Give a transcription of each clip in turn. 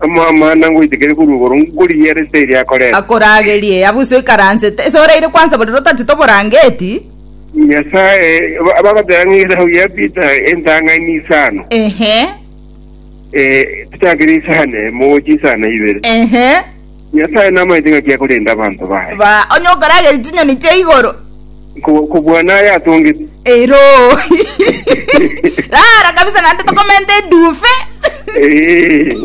Amang'ana ngoitekeria korwa igoro, nkorigia ere ase eria akorete. Akoragerie, abu iso oikaransete, ese oraire kwansa borere otatete oborangeti? Nyasae, ba- bagoteba ng'a esabu ya Peter entang'ani n'isano. Ehe, Eh, titakera isano emo, gochia isano ibere. ehe. Nyasae namaete ng'aki akorende abanto baye. Ba, onye okorageria chinyoni chia igoro. Ko- Kobwana aye atongete. Ero. Rara kabisa naende tokomenta edufe. Eh.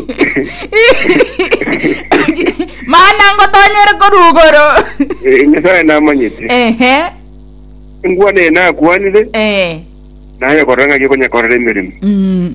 Mana ngotonyere korugoro. Eh, Nyasae namanyete. Ehe. Ngwane nakwanire, Eh. naye korora ng'aki okonyakorera emeremo. Mm.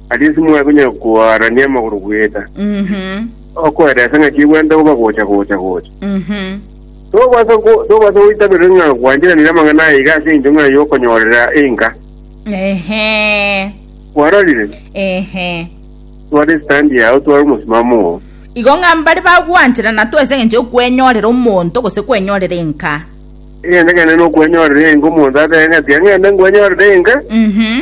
Aria timwaya konyara koarania amagoro bweka, okoeresa ng'aki egwenta goba gocha gocha gocha. Tobasa go- tobasa goitaberera ng'a gwancheranire amang'ana aya iga ase engencho ng'a yokonyorera enka. Ehe. Kwarorire? Ehe. Tware stand yao tware omosimamo oo. Igo ng'a mbare bagwancherana tu ase eng'encho yokwenyorera omonto gose kwenyorera enka. Egento kende nokwenyorera enka omonto atebe ng'a tiga ng'ende nkwenyorere enka, Mhm.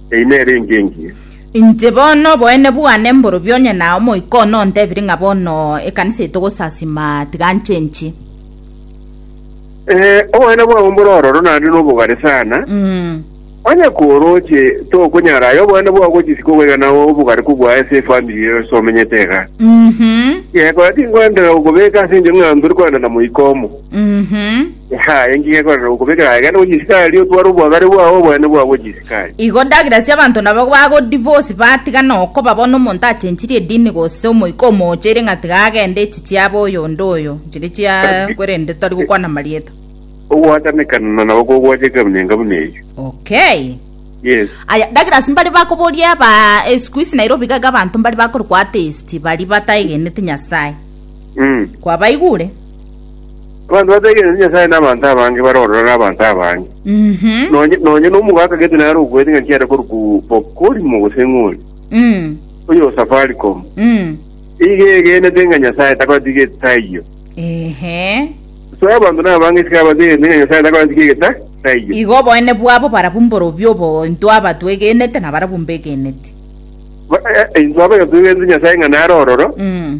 Eyi nere engiya engiya. Inche bono oboene bwane mborobia onye na omoika one ontebiri ng'a bono ekanisa eye togosasima, tiga nchenchi. Eh, oboene bwabo mbore ororo naende nobogare sana. Mm. Onye koroche tokonyara aye oboene bwao gochisi kogoiga na obogare kobua ase efamiri ero ase omenyete iga. Mhm. Yekora tinkwendera gokobeka ase enchera ng'a ntore koenda na moika omo. Mhm. Aya engiya ekorerwa gokobekera aye, genda gwe chisikari, otware obwagare bwao, obonene bwao bwe chisikari. Igo ndagera ase abanto nabo bagodivorce batigana okoba bono omonto achenchirie edini gose omoika omoocheire ng'a tiga agende echi chiabe oyonde oyo chire chiaye korende tori gokwana amarieta. Ogwatanekana nabo kogwacheka emenyenga buna eyio. Okay. Yes. Aya ndagera ase mbare bakoboria ba eh, siku isi Nairobi iga iga abanto mbare bakorokwa atheist bari bataegenete Nyasaye. Mm. Kwabaigure? Abanto bategeneti Nyasae n'abanto abange bare ororo n'abanto abange. Mhm. Nonye nonye n'omogaka gete nare okwete ng'a nchiare koruku bokorimo gose ng'ori. Mm. Oyo o Safaricom. Mm. Iga egenete ng'a Nyasae takotiga etaiyo. Ehe. So abanto n'abange isiko abategeneti ng'a Nyasae takotiga egeta taiyo. Igo oboene bwabo barabwo mborobio obo intwe aba twegenete na barabwo mbegeneti. Ba- eh, Intwe abaiga twegenete Nyasae ng'a nare ororo, Mm.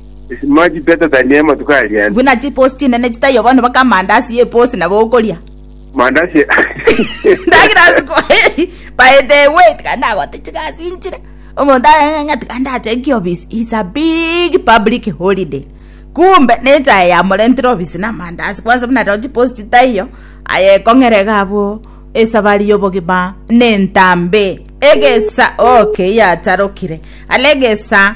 Buna chiposi chinene chitaiyo bono baka amandasi y'eposi nabo okoria. Ndagira ase kwa baete ewe tiga ndagote chigasi inchire. Omonto agakenya ng'a tiga ndache inki ofisi. It's a big public holiday. Kumbe na echae yamorentire ofisi na amandasi kwanza buna rero chiposi chitaiyo aye ekong'era iga abwo esabari y'obogima na entambe. Egesa okay yacharokire. Are egesa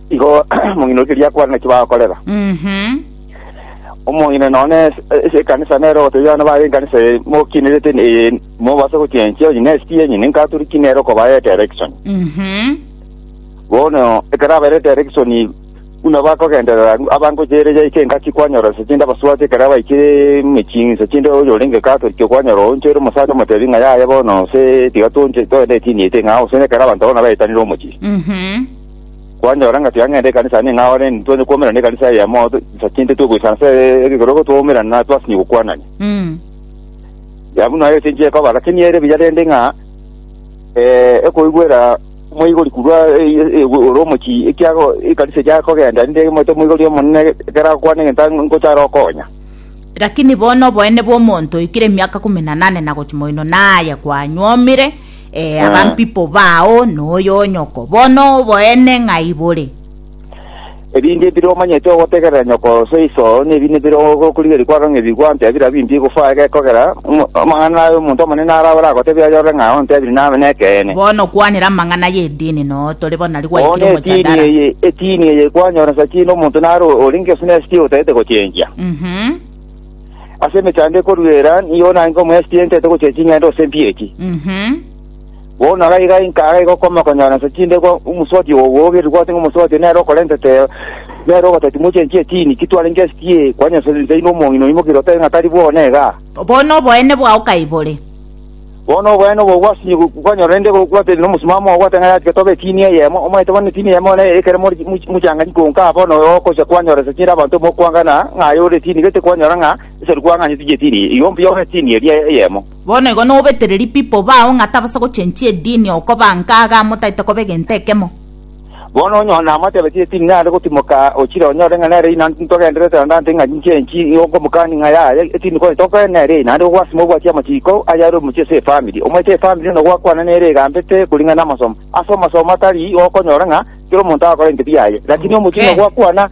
Igo omong'ina oria riakwana naki bagokorera. Mhm. Omong'ina nonye ase ase ekanisa nere ogotebia abana baye ekanisa eye mokinerete eye mobasa gochenchia onye ne ST enye ninkatoriki nere okobaya direction. Mhm. Bono ekero abaire direction buna bakogenderera abangocha ere yaika engaki kwanyora nse chinde abasubati ekero abaikire emechie nse chinde oyo orenge Catholic okwanyora oonche ore omosacha omotebi ng'a yaya bono nse tiga tonche togende etini eye teng'ao gose ekero abanto bono baetanire omochie. Mhm. Kwanyora ng'a tiang'ende ekanisa aane ng'a ore, ntwanye kwoumerana nekanisa eyemo, insa chi'nte twe goisana ase ekegoro igo twoumerana na twasinyie gokwanania. Mm. Ya buna aye tinchia ekoba, lakini ere buya rende ng'a eh, ekoigwera omoigori korwa eh, eh, ore omochie, ekiago ekanisa eria akogenda, rinde emoete omoigori omonene ekero agokwana egento ang- ngochare okonya. Lakini bono oboene bw'omonto oikire emiaka ikomi na nane na gochia moino naye kwanyuomire, Eh, Ah. abampipo bao noyo onyoko, bono oboene ng'ai bore? Ebinto ebire omanyete ogotegerera nyoko gose iso, nebi nibire ogokorigeria kwagang'ebigwa, ontebire abwo imbe igofaa egekogera. Omo- Amang'ana aye omonto omonene arao oragotebie ayorore ng'a ontebire nabe nekeene. Bono kwanera amang'ana y'edini noo tore bono nari Bono gwaikire etini omojadara. eye, etini eye kwanyora nsa ki nomonto naro orenge gose nesi ki otagete gochengia? Mhm. Ase emechando ekoruera nigo nainke omoexperience ete gochia ching'ende gose mpiya echi. Mhm. Bono iga iga inka iga iga okoma konyora nse chinde kwa omusoti owo ogerire kwate ng'a omusoti nere okorentete nere ogoteti moche enchie etini kitware inke esikie kwanyesore nse inde omong'ina oimoke otebe ng'a tari bwona iga. Bono oboene bwao kai bore? Bono obonene obo bwasinye kwanyorwa, rende gwatebwa nomosomba ogwete ng'a yatiga tobe etini eyemo. Omanyete bono etini eyemo bono nere ekero more mochang'ani, konka bono ogocha kwanyoresa chiire abanto mokwangana ng'a aye ore etini, gete kwanyora ng'a esari kwang'anyete chi'etini igoro mbuya ore etini eria eyemo. Bono igo nobetererie people bao ng'a tabasa gochenchia edini, okoba nkaga, motaete koba egento ekemo. Bono onye one amotebetie ati, Ninyare gotimoka ochire onyore ng'a nere inanti ntogenderete naende ante ng'a ninche inchi ng'okomokani ng'a yaya, tindi kore tokoe nere ee, naende gogwasima obwati amachiko ayare omochie ase efamiri. Omochie efamiri onde gwakwana nere egambete koring'ana namasomo. Ase amasomo atari gokonyora ng'a kera omonto agakora ebinto biaye. Lakini omochie onde gwakwana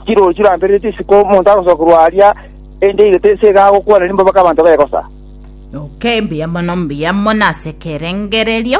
chirori chirambereretie isiko omonto agosokerwa aria, ende igo tese iga agokwana rimbabake abanto begosa. Okay, mbuya mono mbuya mono ase ekerengererio.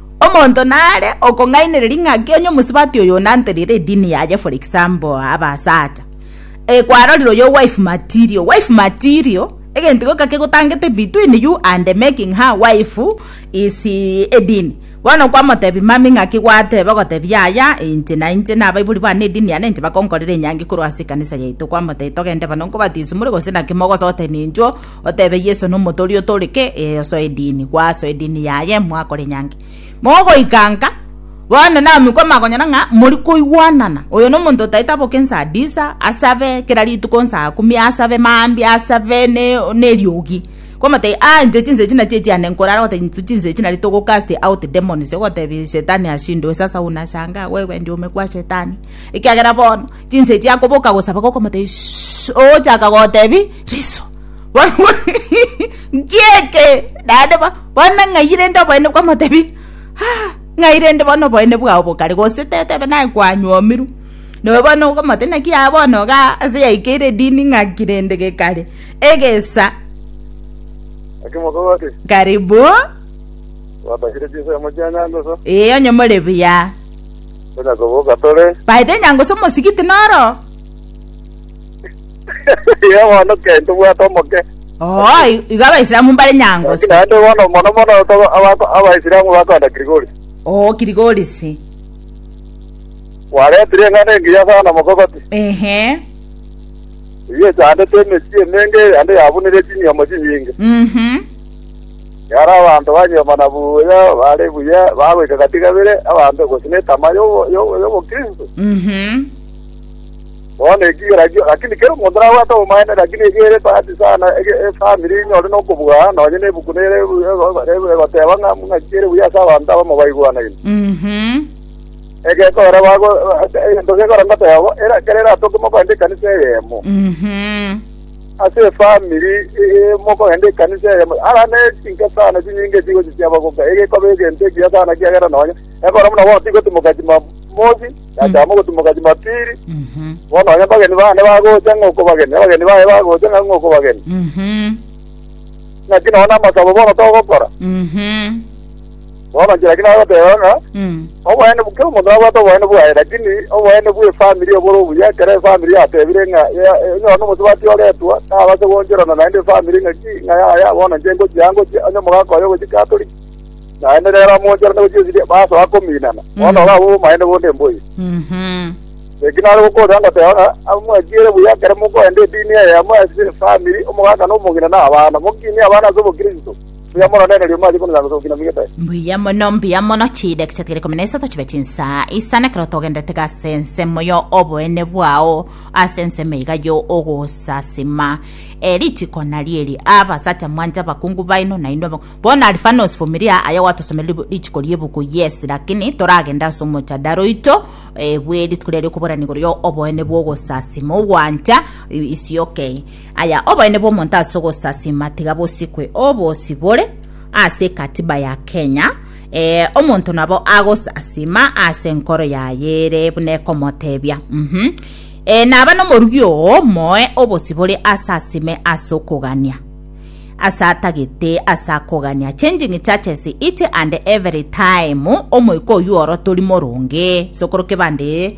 Omonto nare okong'ainereria ng'aki onye omosubati oyo onanterire edini yaye for example abasacha eh, kwarorire oyo wife material wife material egento gioka kegotangete between you and making her wife is edini bono kwamotebi mami ng'aki gwatebe ogotebi yaya inche na inche nabaibori bane edini yane inche bakonkorera enyangi korwa ase ekanisa yaito kwamotebia togende bana nkobatisumore gose naki mogosotenenchwo Otebe Yeso nomote oria otore ke eyoso edini gwaso edini yaye mwakore nyange mogoika nka bono namikwa amagonyana ng'a mori koigwanana oyo nomonto otaete aboke nsa disa asabe kera rituko nsa akumi asabe mambi asabe ne neriogi komotebia ah inche chinsa echi nachi echiane nkorara gote intwe chinsa echi nari togo cast out demons ogotebia shetani ashindwe sasa unashangaa wewe ndio umekua shetani ekiagera bono Chinsa echi akoboka gosaba gokomotebia Shh, ogochaka gotebi riso. Bono nkieke naende bo- bono ng'ai rende oboene bwamotebi "Ah, ng'ai rende bono oboene bwao bokare gose tetebe naye kwanyomirwe noe bono okomote naki yaya bono iga ase yaikeire edini ng'aki rende gekare egesa Akimokogote, karibu Watakire chinsa ya mochianyangoso? ee onye more buya Tonya koboka tore. Baete enyango ase omosigiti noro. Iga bono kei tobwate omoke. Oo, i- igo Abaisilamu mbare nyango Lakini ase. naende bono mono mono toba- abako- abaisilamu bakoenda kirigori. Oo, kirigorisi. Kwaretire eng'ana engiya sana mokogoti. Ehe. Eyio echandete emechie emenge ande yabunire chinyomo chinyinge. Mhm. Ekero abanto banyuomana buya bare buya bagoika gatigabere abanto gose netama y'obo- y'obo- y'obokristo, Mhm. bono eki ekerakio, lakini kera omonto nabwate obomaene, lakini eki ere bahati sana ege- efamiri enyore nokobugana nonye na ebuku nere ego- egoteba ng'a ng'aki ere buya ase abanto abamo baigwanaine. Mhm. Egekogera bago egento gekogera ngoteba bo era ekero eratoke mokorende ekanisa eyemo. Mhm. ase efamiri mokorende ekanisa eyemo, ara ne chinsa sana chinyinge chigochichia abagoka, ege ekoba egento ekiya sana, ekiagera nonya ekero buna bono tigotimoka Jumamosi, yachaka mogotimoka Jumapili, Mhm. bono nonya abageni bande bagocha ng'a okobageni, abageni baye bagocha ng'a ng'a okobageni, Mhm. naki nonya na amasabo bono togokora. Mhm. Bobache lakini bagoteba ng'a Mm. oboene bu- kera omonto nabwate oboene bwaye lakini oboene bwe family obore obuya ekero efamily yatebire ng'a ya- enyora nomosubati oretwa nabase gooncherana naende efamily ng'a ki ng'a yaya bono inche ngochia ngochia onye omogaka oye ogochia catholic naende nere amooncherane gochia esidi basoa kominana bono iga abwo obomaene bonde mboiyo Mhm. eki nare gokoorera ngoteba ng'a aba mwatiire buya ekero mokorenda edini eye yamwe ase efamily omogaka na omong'ina na abana mokinie abana ase obokristo Mbuya mono, nere riomwa aye konuga gose gokina migete. Mbuya mono, mbuya mono, chidakika chikere ikomi na isato chibe chinsa isano ekero togendete iga ase ensemo yo oboene bwao, ase ensemo iga yo ogosasima. E, ritiko nario eri, abasacha mwanche abakungu baino, na inwe abak- bono Alfanos Vumilia, aye gwatosomeire ribu- ritiko riebuku, yes, lakini toragende ase omochadara oito e, bwe rituko riria riokoborana igoro yo oboene bwa ogosasima, ogwancha, i- isioke. Aya oboene bw'omonto ase ogosasima tiga bosikwe obosi bore ase ekatiba ya Kenya eh, omonto nabo agosasima ase enkoro yaye ere buna ekomotebia mhm eh, naba nomorugi oo moe obosi bore asasime ase okogania ase atagete ase akogania changing churches each and every time omoika oyu oro tori moronge sokoro kebande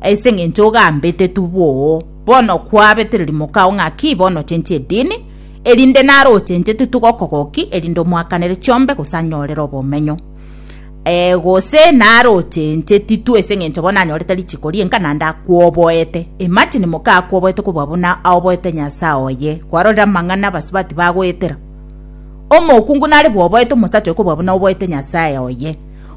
Ase engencho ogambete tuboo, bono kwabete ririmoka o ng'a ki bono ochenchie edini, erinde naro ochenchie tutuge okogoki, erinde omoakanere chiombe gose anyorere obomenyo. E, gose naro ochenchie titu ase engencho bono anyorete richiko rienka naende akwoboete. Imagine moka akwoboete kobua buna aoboete Nyasae oye. Kwarorire amang'ana abasubati bagoetera? Omokungu nare bwoboete omosacha oyo kobua buna oboete Nyasae oye.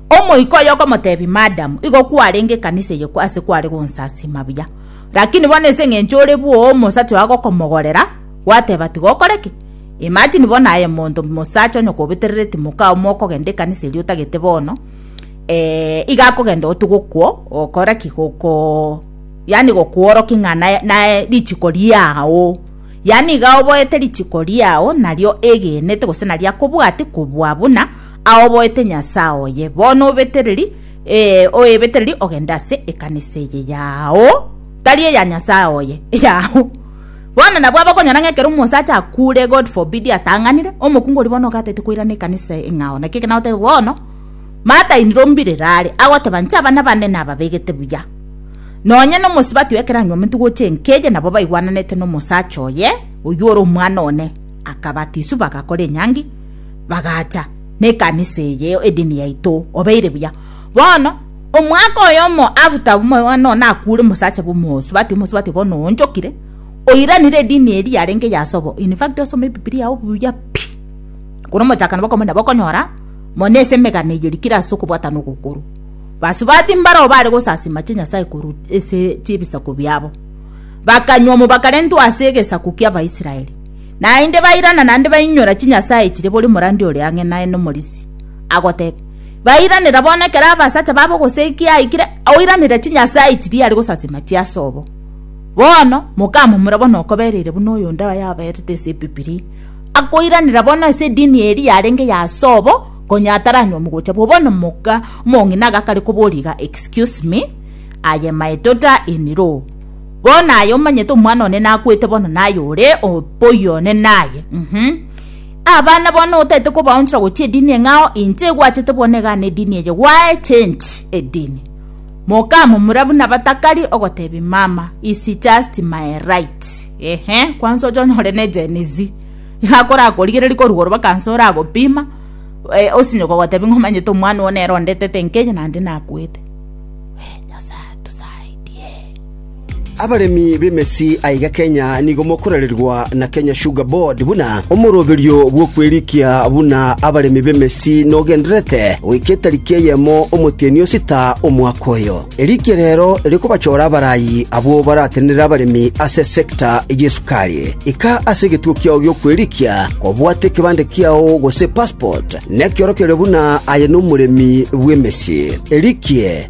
Omoika oye okomotebia, Madam, igo kwarenge ekanisa eye ase kware gonsasima buya, lakini bono ase engencho ore bwoo omosacha oyo agokomogorera, gwateba tiga okore ki? Imagine bono aye monto mosacha onye kobeterereti moka omo okogenda ekanisa eria otagete bono eh iga akogenda oti gokwo okore ki goko yaani gokworoki ng'a naye naye richiko riao yaani iga oboete richiko riao nario egenete gose naria kobwati kobua buna aoboete Nyasae oye, bono obetereri, ee, oebetereri ogende ase ekanisa eye yao, tari eya Nyasae oye, eyao. Bono nabwo abakonyora ng'a ekero omosacha akure, God forbid, atang'anire, omokungu oria bono ogatete koirana ekanisa eye ng'ao, naki ekero nagoteba bono, matainire ombirere are, agoteba inche abana bane nababegete buya, nonye na omosibati oye ekero anywa omonto gocha enka eye nabo baigwananete na omosacha oye, oywo ore omwana one, akabatiswa bagakora enyangi, bagacha nekanisa eye edini yaito obeire buya bono omwaka oyomo after omwana one akure omosacha bomosubati omosubati bono oonchokire oiranire edini eri yarenge yasobo in fact osome ebibilia yao buya pi kore omochakano bokomo nabo okonyora mono ase emegano eye orikire ase okobwatana ogokoro basubati mbaro bare gosasima chinyasae korwa ase chibisaku biabo bakanywa omobakarentwe ase egesaku kiabaisraeli. Naende bairana naende bainyora chinyasae chire boria omorandi ore ang'e naye nomorisia, agotebia, Bairanera bono ekero abasacha babo gose ekiya aikire, oiranere chinyasae chiria are gosasima chiase obo. Bono mokamomura bono okobereire buna oyonde aye aberete ase Ebibilia, akoiranera bono ase edini eria yarenge y'ase obo, konya ataranywa omogocha bwo bono moka omong'ina agakare koboria iga, Excuse me, I am a daughter in law. Bono aye omanyete omwana one nakwete bono naye ore oboyie one naye mm-hmm. Abana bono otaete kobaonchora gochia edini eng'ao inche egwachete bono egane edini eye gwae change edini moka momura buna batakari ogotebi mama is just my right ehe kwanza ocho nyore ne jenizi igakora akorigereri korugoro bakansa ora agopima e, eh, osinyoko gotebi ngomanyete omwana one erondetete nkeye nande nakwete Abaremi b'emesi aiga Kenya nigo mokorererwa na Kenya Sugar Board buna omoroberio bw'okwerikia buna abaremi b'emesi nogendererete goika etariki eyemo omotienyi o sita omwaka oyo. Erikia rero rikobachora abarayi abwo baratenenere abaremi ase sector y'esukari. Ika ase egetuo kiao gi'okwerikia kobwate ekebande kiao gose passport nekiorokererio buna aye nomoremi bw'emesi. Erikie